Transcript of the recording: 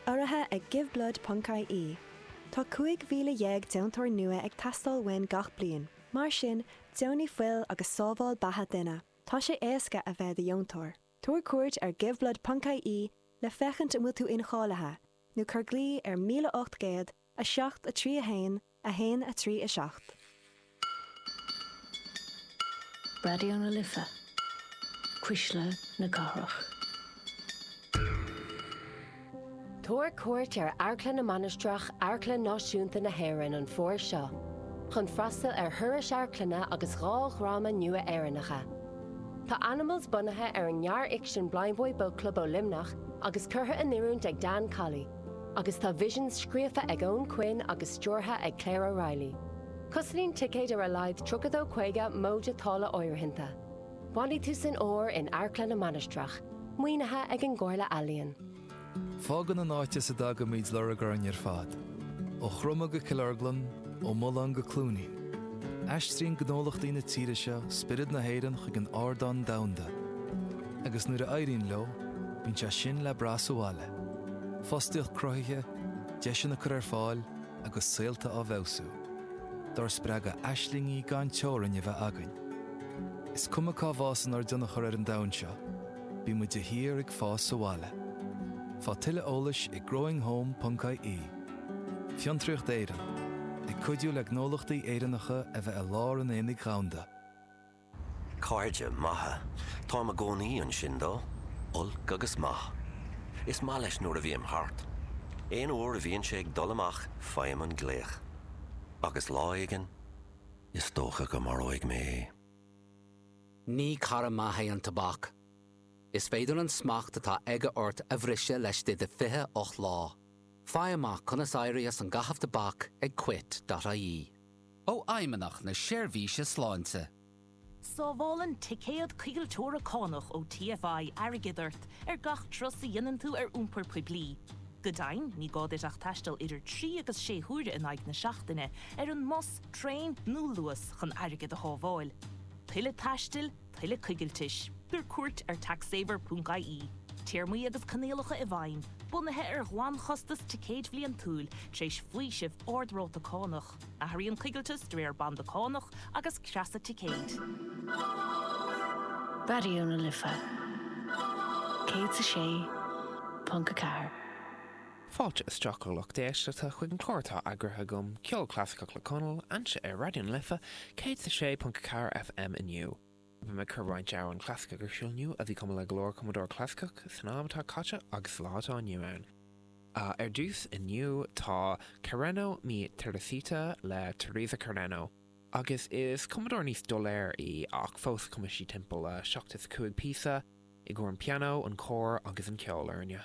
Urraithe ag Giveblood Ponc ie, tá 15,000 deontóir nua ag teastáil uainn gach bliain. Mar sin, deonaigh fuil agus sábháil beatha duine. Tá sé éasca a bheith i do dheontóir. Tabhair cuairt ar Giveblood Ponc ie le féachaint an bhfuil tú incháilithe, nó cuir glaoch ar 1800 7, 3, 1, 1, 3, 7. Raidió na Life, Cuisle na Cathrach. Tabhair cuairt ar Amharclann na Mainistreach Amharclann Náisiúnta na hÉireann an Fómhar seo chun freastal ar thurais Amharclainne agus dhá dhráma nua Éireannacha. Tá Animals bunaithe ar ghearrfhicsean Blindboy Boatclub ó Luimneach agus curtha in oiriúint ag Dan Colley. Agus tá Visions scríofa ag Eoin Quinn agus stiúrtha ag Claire O'Reilly. Cosnaíonn ticéid ar a laghad tríocha dó caoga móide táille áirithinte. Bainfidh tú an-só as in Amharclann na Mainistreach, maoinithe ag an gComhairle Ealaíon. Fágann an áit as a dtagaimid lorg orainn ar fad. Ó Chromadh go Cill Orglan, ó Mhuileán go Cluainín. Aistríonn gnólachtaí na tíre seo spiorad na hÉireann chuig an ardán domhanda. Agus nuair a éiríonn leo, bíonn sé sin le brath sa bhaile. Fostaíocht cruthaithe, deiseanna á gcur ar fáil agus saolta á bhfeabhsú. Dár spreagadh aislingí gan teorainn a bheith againn. Is cuma cá bhfásann ár dtionchar ar an domhan seo, bímid de shíor ag fás sa bhaile. Fá tuilleadh eolais ag growinghome.ie. Fiontraíocht Éireann, ag cuidiú le gnólachtaí Éireannacha a bheith i lár an aonaigh dhomhanda. Cairde maithe. Táim i gcónaí ansin dó, olc agus maith. Is maith leis nuair a bhím thart. Aon uair a bhíonn sé ag dul amach faighim an glaoch. Agus lá éigin, is dócha go maróidh mé é. Ní cara maith é an tobac. Is féidir an smacht atá aige ort a bhriseadh laistigh de 28 lá. Faigh amach conas éirí as caitheamh tobac ag quit.ie. ó Fheidhmeannacht na Seirbhíse Sláinte. Sábhálann ticéad coigilteora cánach ó TFI airgead ort ar gach turas a dhéanann tú ar iompar poiblí. Go deimhin, ní gá duit ach taisteal idir trí agus sé huaire in aghaidh na seachtaine ar an mbus, traein nó Luas chun airgead a shábháil. Tuilleadh taistil, tuilleadh coigiltis. Tabhair cuairt ar taxsaver.ie. Téarmaí agus coinníollacha i bhfeidhm, bunaithe ar ghlanchostas ticéid bhliantúil, tar éis faoiseamh ard-ráta cánach. Athraíonn coigilteas de réir banda cánach agus creasa ticéid. Raidió na Life 106.4. Fáilte isteach a lucht éisteachta chuig an clár atá eagraithe agam, Ceol Clasaiceach le Conal, anseo ar Raidió na Life 106.4 FM inniu. Bhí mé ag cur roinnt amhrán clasaiceach ar siúl inniu a bhí cumtha le go leor cumadóirí clasaiceach san am atá caite agus sa lá atá inniu ann. Ar dtús inniu tá Carreno mi Teresita le Teresa Carreno agus is cumadóir níos doiléir í ach fós chum sí timpeall seachtó is a cúig píosa i gcomhair an pianó, an cór agus an ceolfhoirne.